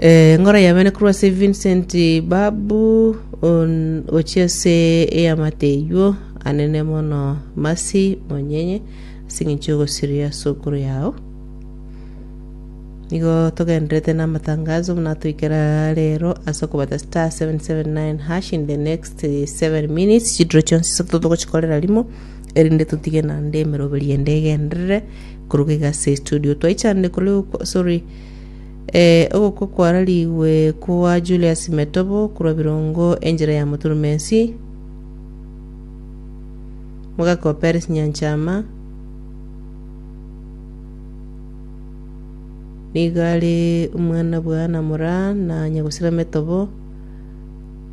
Eh, ngoro yabene korwa ase Vincent Babu on- gochia ase eyamate eywo anene mono masi monyenye ase eng'encho y'ogosiria sukuru yao nigo togenderete namatangazo buna toikera rero ase okobata star 779 hash in the next 7 minutes chidiro chionsi isato togochikorera rimo erinde totige naende emeroberi ende egenderere koruga iga ase estudio. Twaichanire kore okwa- sorry, eh, ogokwa kwararigwe kwa Julius Metobo korwa Birongo enchera ya Moturumensi, mogaka wa Peris Nyanchama, nigo are omwana bwa Anna Moraa na Nyagusira Metobo,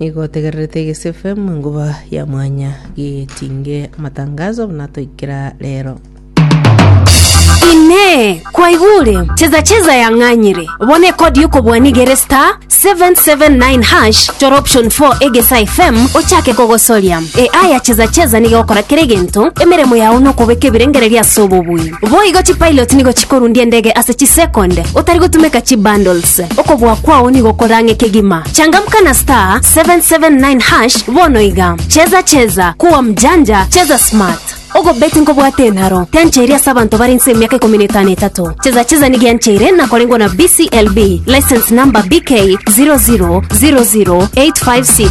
Nigo otegererete egesefe mwenguba ya mwanya gigetinge amatangazo buna toikera rero. Inee, kwaigure? Cheza cheza yang'anyire. Bono ekodi yokobua nigere star 779 hash chora option 4 egesa FM ochake kogosoria. AI ya cheza cheza nigo egokora kera egento, emeremo yao nokobeka ebirengererio ase obobui. Boigo chipilot nigo chikorundia endege ase chisekonde otari gotumeka chibundles. Ase okobua kwao nigo korang'e kegima. Changamka na star 779 hash bono iga. Cheza cheza, kuwa mjanja, cheza smart. Ogobeti nkobwate enaro, tiancheiri ase abanto bare inse emiaka ikomi na etano etato. Cheza cheza nigo yancheire nakorengwa na BCLB, license number BK 0000856.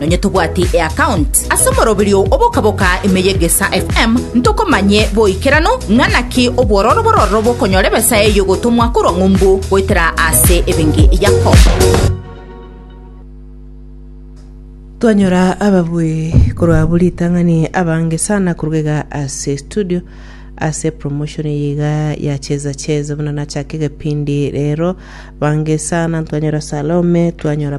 Nonye tobwati eaccount ase omoroberio obokaboka ime y'Egesa FM, ntokomanye boikeranu ng'a naki obwororo bororo bokonyora ebesa eyio gotomwa korwa ng'umbu goetera ase ebenki yako. Twanyora ababui korwa abwo ritang'ani abange sana korwa iga ase studio ase promotion eye iga ya cheza cheza buna nachake egepindi rero bange sana twanyora salome twanyora